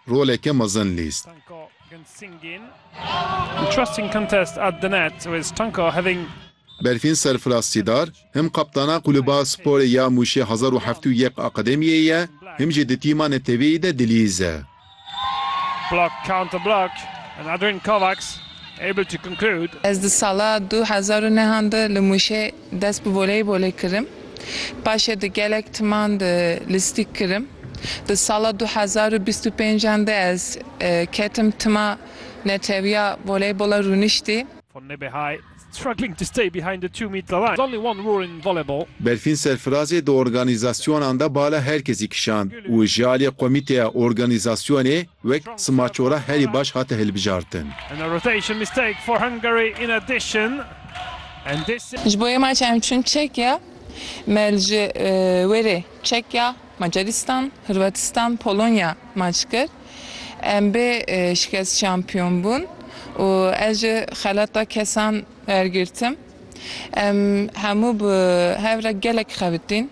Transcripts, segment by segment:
roleke mezin lîst. Berfîn Serfiraz Sîdar, him kaptana Kulüba Sporê ya Muşê Hezar û Heftê û Yek Akademiyê ye, him jî di tîma neteweyî de dilîz e. Ez di sala du hezar û nehan de li Muşê Dest bi voleybolê kirim. Paşê di gelek timan di lîstik kirim. Di sala du hezar û bîst û pênc an de ez ketim tima netewiya voleybola rûniştî. Von Nebehay struggling to stay behind the two metre line. There's only one rule in volleyball. Berfîn Serfirazê di organîzasyonan de bala her kesî kişand û ji aliyê komîteya organîzasyonê, wek simaçora herî baş hate hilbijartin. Ji bo yê maça em çûn Çekya, me li ji wêrê Çekya, Macaristan, Hurwatistan, Polonya maç kir. Em bê şikest şampiyon bûn û ez ji xelata kesan wergirtim. Em hemû bi hev re gelek xebitîn.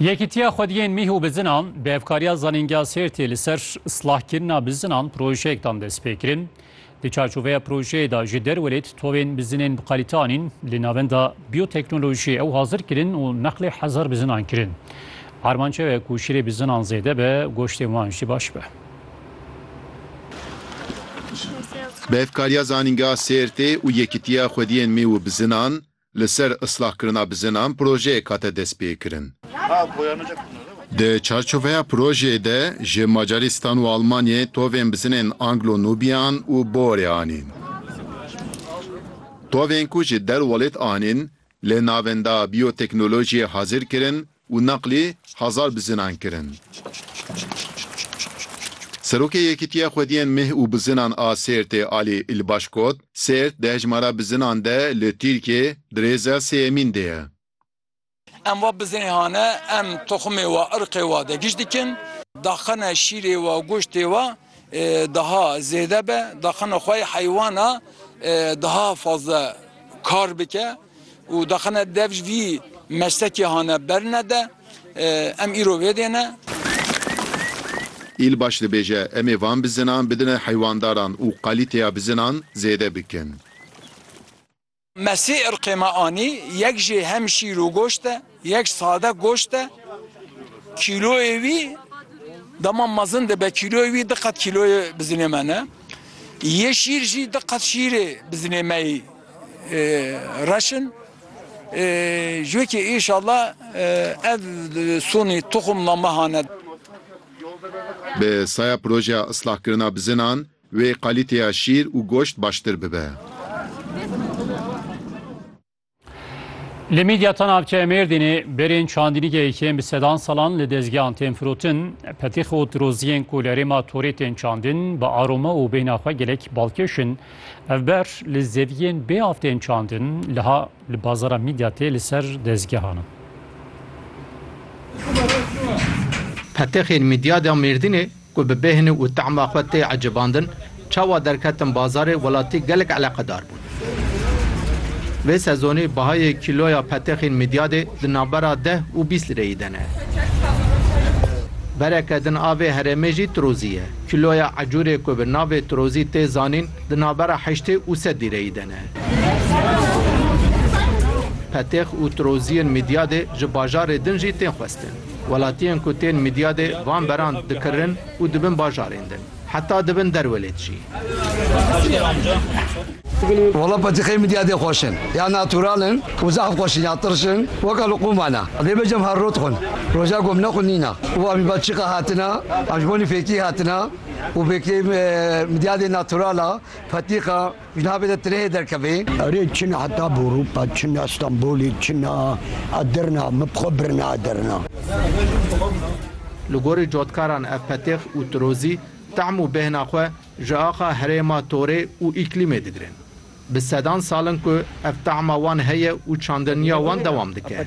Yekîtiya Xwediyên Mîh û Bizinan bi hevkariya Zanîngeha Sêrtê li ser silahkirina bizinan projeyek dan destpêkirin. Di çarçoveya projeyê de ji derwelêt tovên bizinên bi kalîte anîn, li navenda bîyoteknolojiyê ew hazir kirin û neqlê hezar bizinan kirin. Armanc ew e ku şirê bizinan zêde be, goştên wan jî baş be. Bi hevkariya Zanîngeha Sêrtê û Yekîtiya Xwediyên Mîh û Bizinan, Li ser islahkirina bizinan projeyek hate destpêkirin. Di çarçoveya projeyê de ji Macaristan û Almanyayê tovên bizinên Anglo-Nûbiyan û Boerê anîn. Tovên ku ji der welêt anîn li navenda Bioteknolojiyê hazir kirin û neqlî hezar bizinan kirin. Serokê Yekîtiya Xwediyên Mih û Bizinan a Sêrtê Alî Îlbaş got, Sêrt di hejmara bizinan de li Tirkiyê di rêza sêyemîn de ye. Em va bizinê hane, em toximê wa, irqê wa de giş dikin. Daxine şîrê wa, goştê wa. daha zêde be, daxina xwe yê heywana daha fazla kar bike û daxina dev ji vî meslekê hane ber nede. Em îro vê dê ne. Îlbaş dibêje, Em ê van bizinan bidine heywandaran û kalîteya bizinan zêde bikin. Mesî irqê me anî, yek jî hem şîr û goşt e, yek sade goşt e. Kîloyê wî dema mezin dibe, kîloyê wî di qat kîloyê bizinê me ne. Yê şîr jî di qat şîrê bizinê me yî reş in. Ji wê kê înşala ev sonî tuxumla me hane. Bi saya projeya islahkirina bizinan, Wê qalîteya şîr û goşt baştir bibe. Li Midyata navçeya Mêrdînê berên çandînîgê yên bi sedan salan li dezgehan tên firotin, petîx û tiroziyên ku li herêma Torê tên çandin bi aroma û bêhna xwe gelek balkêş in. Ev ber li zeviyên bê av tên çandin liha li bazara Midyatê li ser dezgehan in. Petixên Midyata Mêrdînê Ku bi bêhni û tahma xwe tê ecêbandin, çawa derketin bazarê welatî gelek eleqedar bûn. Vê sezonî bahayê kîloya petexên mîdyadê di navbera deh û bîst lireyî de ne. Bereke din a vê herêmê jî tirozî ye. Kîloya ecûrê ku bi navê tirozî tê zanîn di navbera heştê û sed lîreyî de ne. Petex û tiroziyên mîdyadê ji bajarê din jî tên xwestin. Welatiyên ku tên Midyadê van beran dikirin û dibin bajarên din. Heta dibin derwelêt jî. Wala petîxeyên Midyadê xweş in. Ya natural in û zehf xweş in ya tirş in. Weka li qûma ne. Lê bejem her rot xwin. Roja ku em nexwinîna û em ji Belçîka hatine, em ji bo nîfêkî hatine û vêkê Midyadê natural a, petîxa, Ji navê de tireyê derkevê. Erê çina heta Bûrûpa, çina Stenbolê, çina Edirna, min bi xwe birina Edirna. Li gorî cotkaran ev petêx û tirozî tehm û bêhna xwe ji axa herêma torê û îklîmê digirin. Bi sedan sal in ku ev tehma wan heye û çandiniya wan dewam dike.